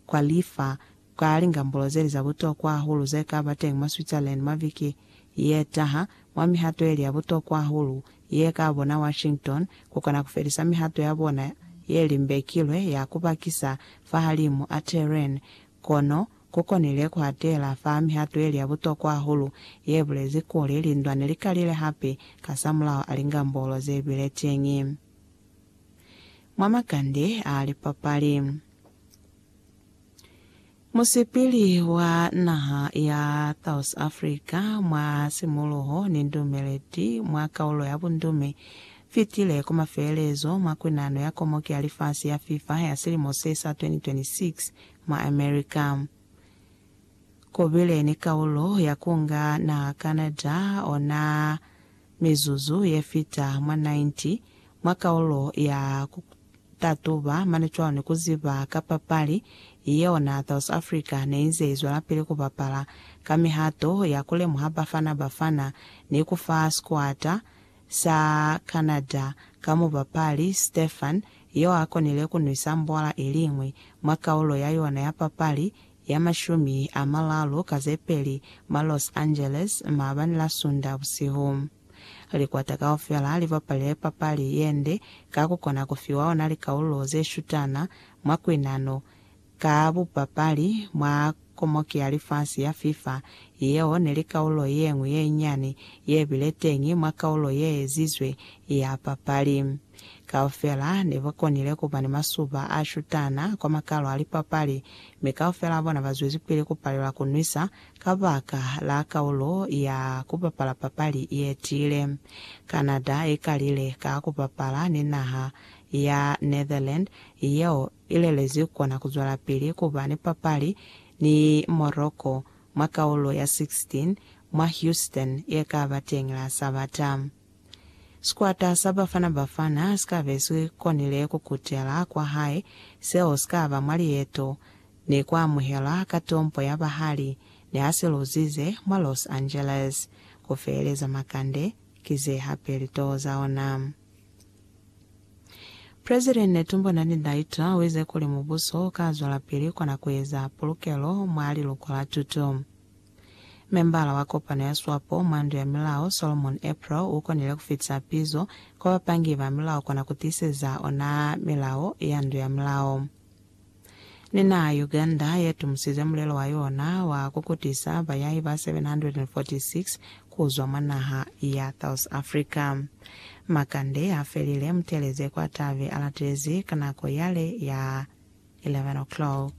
kwa lifa ka lingambulozeli za butokwa hahulu ze ka ba teñi mwa Switzerland mwa viki ye taha, mwa mihato yeli ya butokwa hahulu ye ka bona Washington ku kona ku felisa mihato ya bona ye limbekilwe ya ku bakisa fahalimu a Tehran, kono ku konile ku hatela fa mihato yeli ya butokwa hahulu ye bulezi kuli lindwa ne li kalile hape kasamulaho a lingambulo ze bile teñi. mwa makande a lipapali. Musipili wa naha ya South Africa mwa simuluho ni ndumeleti mwa kaulo ya bundume fitile ku mafelelezo mwa kunano ya Komoki ya Lifasi ya FIFA ya silimo se sa 2026 mwa America. Kubile ni kaulo ya kunga naha Canada ona Mizuzu ye fita mwa 90 mwa kaulo ya ku tatuba mane cwani ku ziba ka papali yeo na South Africa ne inze izwelapili ku bapala ka mihato ya ku lemuha Bafana Bafana ni ku fa sikuata sa Canada ka mubapali Stephan yo a konile ku nwisa mbwala iliñwi mwa kaulo ya yona ya papali ya mashumi a malalu ka ze peli mwa Los Angeles maabani la Sunda busihu. Likwata kaufela li bapalile papali ye nde ka ku kona ku fiwa ona likaulu ze shutana mwa kuinano ka bupapali mwa Komoki ya Lifasi ya FIFA yeo ne li kaulo ye ñwi ye nyani ye bile teñi mwa kaulo ye ezizwe ya papali. Kaufela ne ba konile ku ba ni masuba a shutana kwa makalo a lipapali, mi kaufela a bona ba zwezipili ku palela ku nwisa kabaka la kaulo ya ku bapala papali ye tiile. Canada i kalile ka ku bapala ni naha ya Netherland yeo i lelezi ku kona ku zwelapili ku ba ni papali ni Morocco mwa kaulo ya 16 mwa Houston ye ka ba teñi la Sabata. Sikwata sa Bafana Bafana si ka be si konile ku kutela kwa hae, seo si ka ba mwa lieto ni ku amuhelwa ka tompo ya bahali ni ha si luzize mwa Los Angeles. Ku feeleza makande ki ze hape litoo za ona. President Netumbo Nandi-Ndaitwah u ize kuli mubuso u ka zwelapili kona ku eza pulukelo mwa liluko la tuto. Membala wa kopano ya swapo mwa Ndu ya Milao, Solomon April, u konile ku fitisa pizo kwa bapangi ba milao kona ku tiiseza ona milao ya Ndu ya Milao. Ni naha ya Uganda ye tumusize mulelo wa yona wa ku kutisa bayahi ba 746 ku zwa mwa naha ya South Africa. Makande a felile, Mutelezi kwa tabe a latelezi ka nako yale ya 11:00.